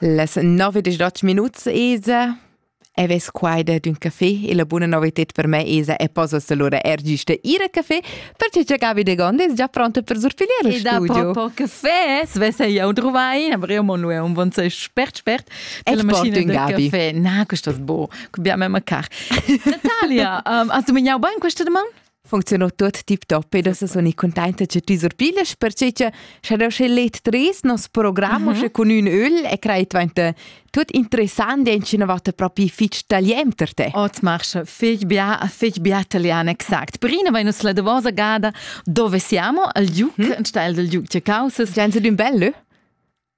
Les nove dixdotg minuts esa e ves quaida d'ün café e la buna novited per me esa e posas allura er giusta ir a café perché che Gabi de Gonde è già pronta per surpigliare il studio. E da proprio café, svesse io trovai, aber io mo nu è un buon spert spert. Ecco mattina del Gabi. café. Na, questo è bo, abbiamo mancar. Natalia, um, hast du mir jau ban questa domanda? Funziuno tuot tip top e da soni contenta che ti surpiles perché che scha da sche let tres nos programm uh -huh. con ün öl e crei dventa tut interessant e incina vatta proprio fich tagliem per te. Ot marche fich bia a fich bia italian exact. Prima vai nus la davosa gada dove siamo al Giuc, hm? in style del Giuc che causas. Gianze d'un bello?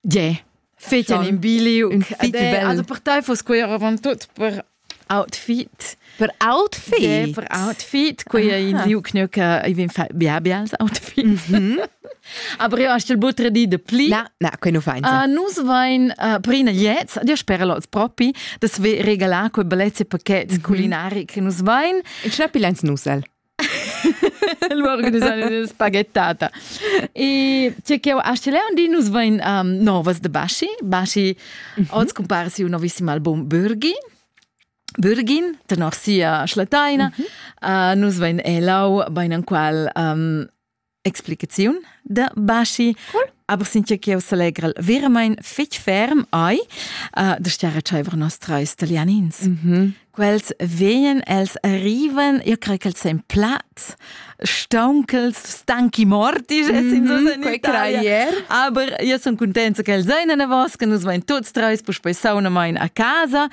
Yeah. Feten in biliu. Un fite bel. Also per te fus quei avant tut per outfit. Per outfit? Yeah, per outfit. Quei è in liu knöcke, ich bin ja bials outfit. Mhm. Aber io hast du butter di de pli. Na, na, quei nu fein. Uh, nus vain uh, prina jetzt, io spero los propi, dass wir regalar quei bellezze paket mhm. kulinari che nus vain. Ich schnapp lens nusel. Lu organisarin spaghettata. E tgei ch'jeu astgel un di nus vein um, novas de Baschi. Baschi mm -hmm. oz cumpara siu novissimo album Bürgin. Bürgin, tenor sia schlateina. Mm -hmm. uh, nus vein elau bein enqual um, explicaziun da Baschi. Cool. Aber since che eu s'allegra veramain fitg ferm ai uh, da stiare tschaiver nostra italianins. Mm -hmm. Quels vegnan, els arrivan, io creo che els sen plats, stauncels, stanchi morti, mm -hmm. in Italia. Aber io sono contenta che els ein a navos, che nus vain tuts treis, poi poi sauna main a casa.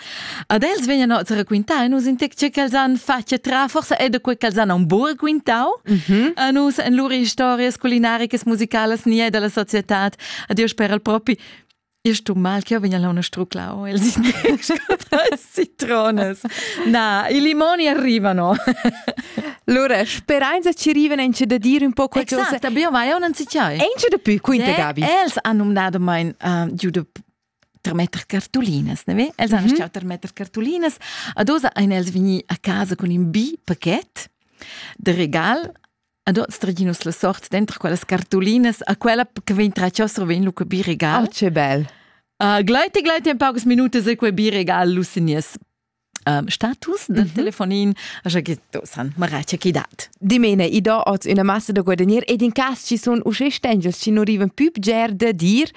Ad els vegnan oz raquintar e nus in tec ce ch'els han fatg a tra, forsa è da quei ch'els han un buc quintau mm -hmm. a nus en lur historias culinaricas musicalas ni è dalla societad. Adios per el propi. Ist du mal che vegna la una struclau els citrones. Na, i limoni arrivano. Allora, speranza ci arrivano anche da dire un po' qualcosa. Esatto, abbiamo vai un anzichiai. Anche da più, quinta yeah, Gabi. Els hanno nato mein uh, giuda termetter cartulinas, ne ve? Els han mm. termetter cartulinas. Ad osa ein els vegni a casa con in bi paquet de regal ad oz traginus la sort dentro quellas cartulinas a quella che vegn traciosso vegn lu bi regal. Oh, che bel. Uh, gleit e gleit en paucas minutas e quei bi regal lu senies um, status del mm -hmm. telefonin așa che to san marace chi dat. Dimene i do oz una massa da guadagner ed in cas ci sun usce stengels ci non riven più bger da dir.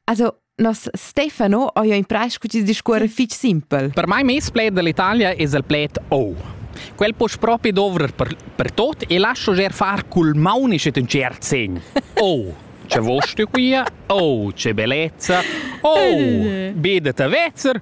Also nos Stefano ha jo in preis che ci discuore fich simpel. Per mai mes pled dell'Italia es il pled oh. Quel può proprio dovrer per, per tot e lascio ger far col maunice un cert segn. Oh, c'è vosto qui, oh, c'è bellezza, oh, vedete vezzer,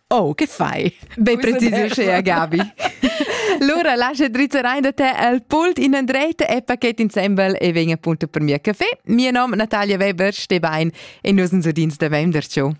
Oh, che fai? Be precisescha Gabi. Lura lascia drizzar ein da te al pult in andrete e paket insembel e vegn appunto per mia caffè. Mia nom Natalia Weber, ste bein e nus uns udins da vem der ciò.